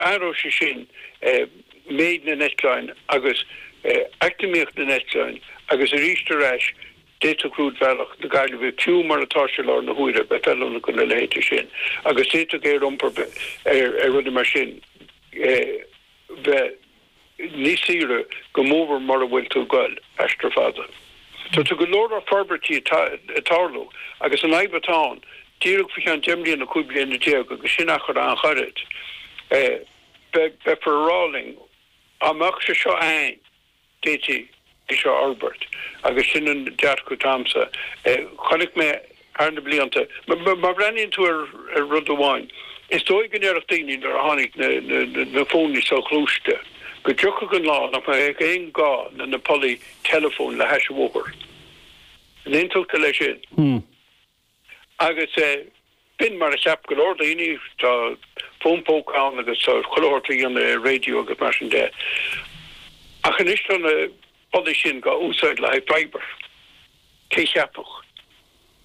Athróidh sé sin méid na n-eitleáin agus eacnamaíocht na n-eitleáin agus arís ar ais d'fhéadfadh rúidbhealach na Gaillimhe, fiú mar atá sé láthair na huaire, bheith feiliúnach do na rudaí sin agus d'fhéadfadh aer-iompar ar rudaí mar sin bheith Ní saoire go mórmhór mura bhfuil tú ag goil aistear fada. Tá go leor forbairtí ag tarlú agus an fhadhb atá ann, díreach faoi cheann deich mbliana, cúig bliana déag, agus sin achar an-ghairid, beifear ag rá linn, dá mbeadh sé seo a'ainn, d'fhéadfaí. é seo a fhorbairt agus sin an dearcadh atá agamsa. Chonaic mé thar na blianta, má bhreathnaíonn tú ar rud amháin, is dóigh go ndéarfadh daoine nuair a tháinig na fóin soghluaiste go dtiocfadh an lá nach mbeadh aon gá le na pollaí teileafóin le hais an bhóthair. An aontófá le sin? Agus b'in mar a cheap go leor daoine, tá fón póca ann agus tá chuile shórt le dhéanamh ar radio agus mar sin de. Ach anois tá na pollaí sin dhá úsáid le haghaidh fibre. Cé cheapfadh,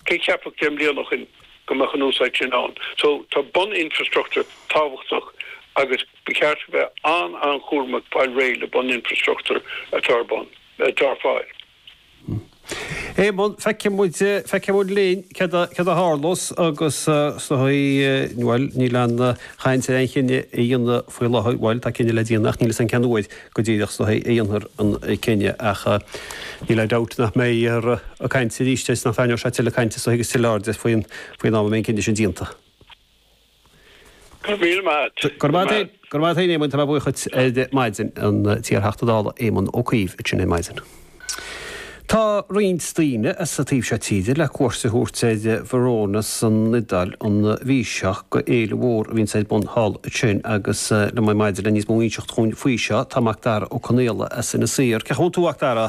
cé cheapfadh deich mbliana ó shoin go mbeadh an úsáid sin ann. So tá bun infrastructure tábhachtach agus ba cheart a bheith an-an-chúramach fáil réidh le bun infrastructure atá ar bun, atá ar fáil. Éamonn, Feicfidh muid, feicfidh muid linn céard a, céard a tharlós agus so í, bhuel níl an chaint ar aon chinneadh a dhéanamh faoi láthair, bhuel tá cinneadh le déanamh ach níl fhios a'inn cén uair go díreach so í a dhéanfar an cinneadh ach níl aon dabht nach mbeidh a chaint aríst agus nach dtarraingeoidh sé tuilleadh cainte so í agus tuilleadh airde faoin, faoin am a mbeidh an cinneadh sin déanta. Go raibh maith. Go raibh maith. Go raibh maith a'd Éamoin, tá mé buíoch dhuit ar maidin, an t-iar-Theachta Dála Éamon Ó Cuív ansin ar maidin. Tá roinnt daoine as an taobh seo tíre le cuairt a thabhairt ar Verona san Iodáil an mhí seo. go fhéile mhór a bhíonns ar bun thall ansin agus liom ar maidin le níos mó inseacht dhúinn faoi seo tá Macdara Ó Conaola as Inis Oírr. Cén chaoi a bhfuil tú a Mhacdara?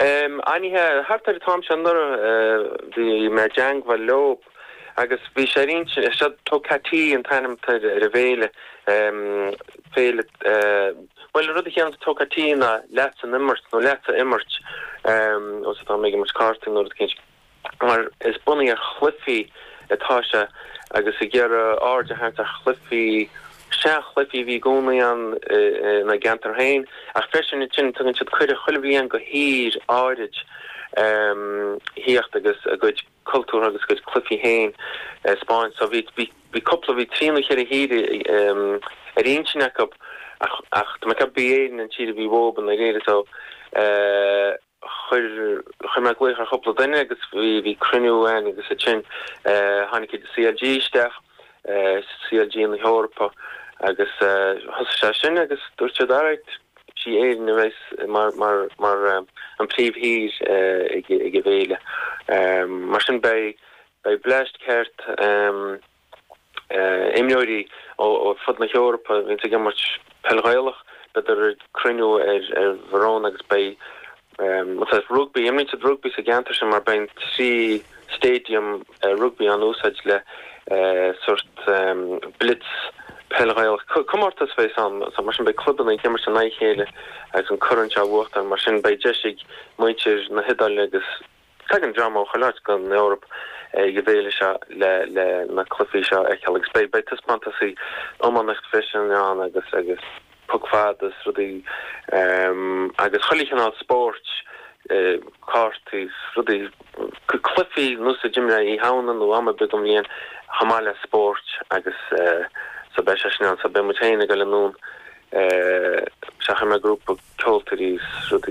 An-mhaith, thart ar an t-am seo anuraidh bhí mé i dteangmhail leob agus bhí sé ar intinn, seo Tocatee an t-ainm atá ar an bhféile, féile, bhuel an rud a chiallaíonns Tocatee ná leatsa an imirt nó leatsa a imirt, má tá mé ag imirt cártaí nó rud eicínt mar sin. mar is bunaithe ar chluifí atá sé agus ag iarraidh aird a tharraingt ar chluifí, sea, chluifí a bhí i gcónaí ann ina gceantar féin ach freisin ansin tugann siad cuireadh chuile bhliain go thír áirid theacht agus a gcuid cultúr agus a gcuid cluifí féin a 'speáint. So bhí, bhí cúpla, bhí trí nó cheithre thír ar intinn acu ach, ach, tá mé ag ceapadh gurb í Éirinn an tír a bhí uathub sa deireadh so. chuir, chuir mé glaoch ar chúpla duine agus bhí, bhí cruinniú ann agus ansin tháinig an CLG isteach, CLG na hEorpa agus thosaigh sé sin agus dúirt siad alright, sí Éirinn a bheas mar, mar, mar an phríomhthír ag, ag an bhFéile. Mar sin beidh, beidh bleaist ceart. imreoirí ó fud na hEorpa a bhíonns ag imirt peil Ghaelach, beidir ag cruinniú ar Bhurón agus beidh rugbaí, imríonn siad rugbaí sa gceantar sin mar beidh trí stadium rugbaí á n-úsáid le sórt blitz peil Ghaelach. Comórtas a bheas ann so mar sin beidh clubanna ag imirt in aghaidh a chéile agus an corn seo a bhuachtáil mar sin beidh deis ag muintir na hIodáile agus. Tagann dream ó chuile áit den Eoraip ag an bhféile seo le na cluichí seo a fheiceáil agus beidh taispeántas iománaíocht freisin ann agus puc fad is rudaí agus chuile chineál spóirt, cártaí is rudaí, cluichí nós a d'imreofá Oíche Shamhna nó am ar bith den bhliain chomh maith le spóirt agus so beidh sé sin ann. So beidh muid féin ag dul anonn is chuir mé grúpa ceoltóirí is rudaí.